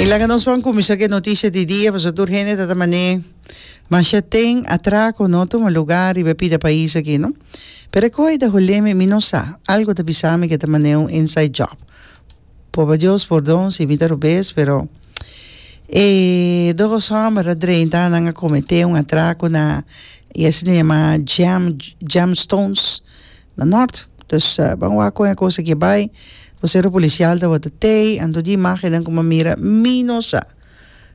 Y laga nos van cuminsa cu e noticia di dia paso tur hende ta ta mané masha ten atraco no tuma lugar riba e pida pais aki no pero e coe ta holemi mi no sa algo ta bisa mi cu ta mané un inside job popa Dios pordon si mi ta robes pero e dos homber a drenta nan a comete un atraco na y asina yama jam jam stones na nort dus ban wak con e cosa aki bay cu sera policial tabata tey anto di imagenen cu mi mira mi no sa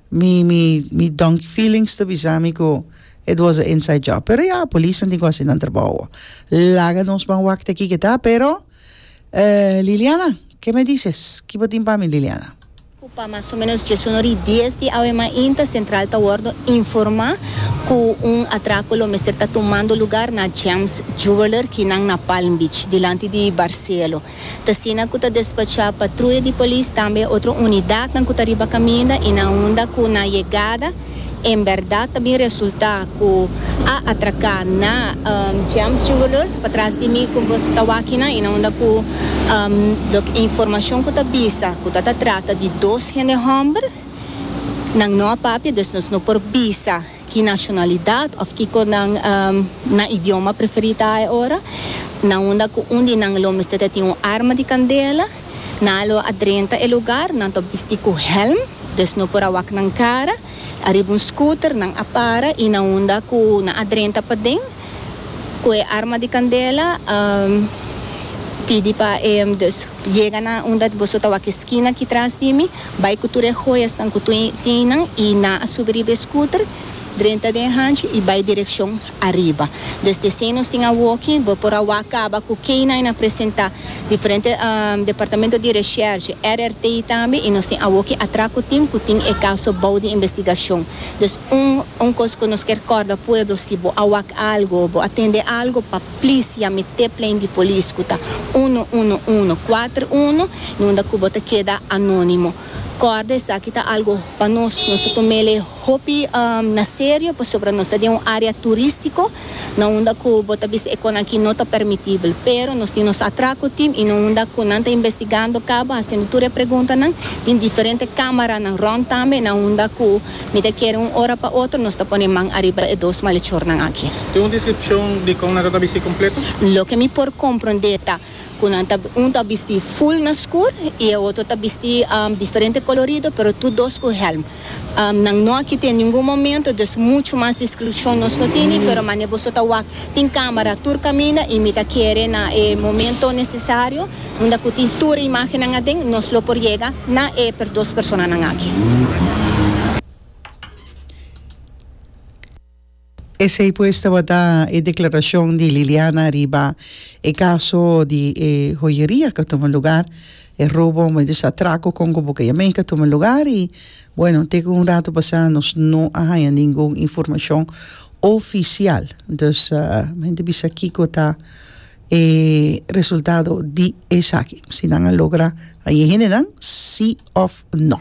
mi mi mi donkey feelings ta bisa mi cu it was a inside job pero ya policenan tin cu haci nan trabao awa laga nos ban wak te aki keta pero Liliana ke me dices kibatin pa mi Liliana. cu pa mas o menos djesunor y dies di awe mainta central ta wordo informa cu un atraco lo mester ta tumando lugar na Gems Jeweler ki nan na Palm Beach, dilanti di Barcelo. T'asina cu ta despacha patruya di polis tambe otro unidadnan cu ta riba caminda y na unda cu na yegada, En berdad ta bin resulta cu a atraca na James Jewellers patras di mi cu nos ta wak hinan hinan unda cu lo que informacion cu ta bisa cu ta ta trata di dos hende homber nan no a papia dus nos no por bisa ki nacionalidad of kico nan nan idioma preferi ta aora nan unda cu un di nan lo mester ta tin un arma di candela. Nan a lo a drenta e lugar, nan ta bisti ku hèlm, dus no por a wak nan kara. Ariba un skuter nan a para i na unda ku nan a drenta paden ku e arma di kandela a pidi pa e dus yega na unda boso ta wak e skina aki tras di mi, bai ku tur e hoyasnan ku tin nan i nan a subi riba e skuter, drenta den hanchi i bai direkshon. ariba. Dus desei nos tin awoki bo por a wak kaba ku kei nan a presentá diferente Departamento di Reshershe, RRT, tambe i nos tin awoki atra ku tin ku tin e kaso bou di investigashon. Dus un un kos ku nos kier kòrda pueblo si bo a wak algu o bo a tende algu pa plis yami te plein di polis ku ta uno uno uno kuater uno i unda ku bo ta keda anónimo. Kòrda esaki ta algo pa nos, nos ta tom'el e hopi na serio pasobra nos ta den un área turístiko na unda ku bo ta bisa e kos aki no ta permitibel. Pero nos tin nos atrako tim i na unda ku nan ta investigando kaba hasiendo tur e preguntanan tin diferente kámaranan rònt tambe na unda ku mi ta kere un ora pa otro nos ta pone man ariba e dos malechornan aki. Tin un deskripshon di kon nan ta tabis'é kompleto? Loke mi por komprondé ta cu nan ta un ta bisti full na skur y e otro ta bisti diferente colorido pero tur dos cu helm. Nan no a kite ningun momento dus mucho mas discrucion nos no tini pero mane boso ta wak tin camera tur caminda y mi ta kere na e momento necesario unda cu tin tur e imagennan aden nos lo por yega na e dos personanan aki. Esei pues tabata e declaracion di Liliana riba e caso di e joyeria cu a tuma lugar, e robo medio sa atraco con cu boca yamen cu a tuma lugar y bueno te cu un rato pasa nos no a haya ningun informacion oficial dus men ta bisa kico ta e resultado di esaki si nan a logra haye hendenan si of no.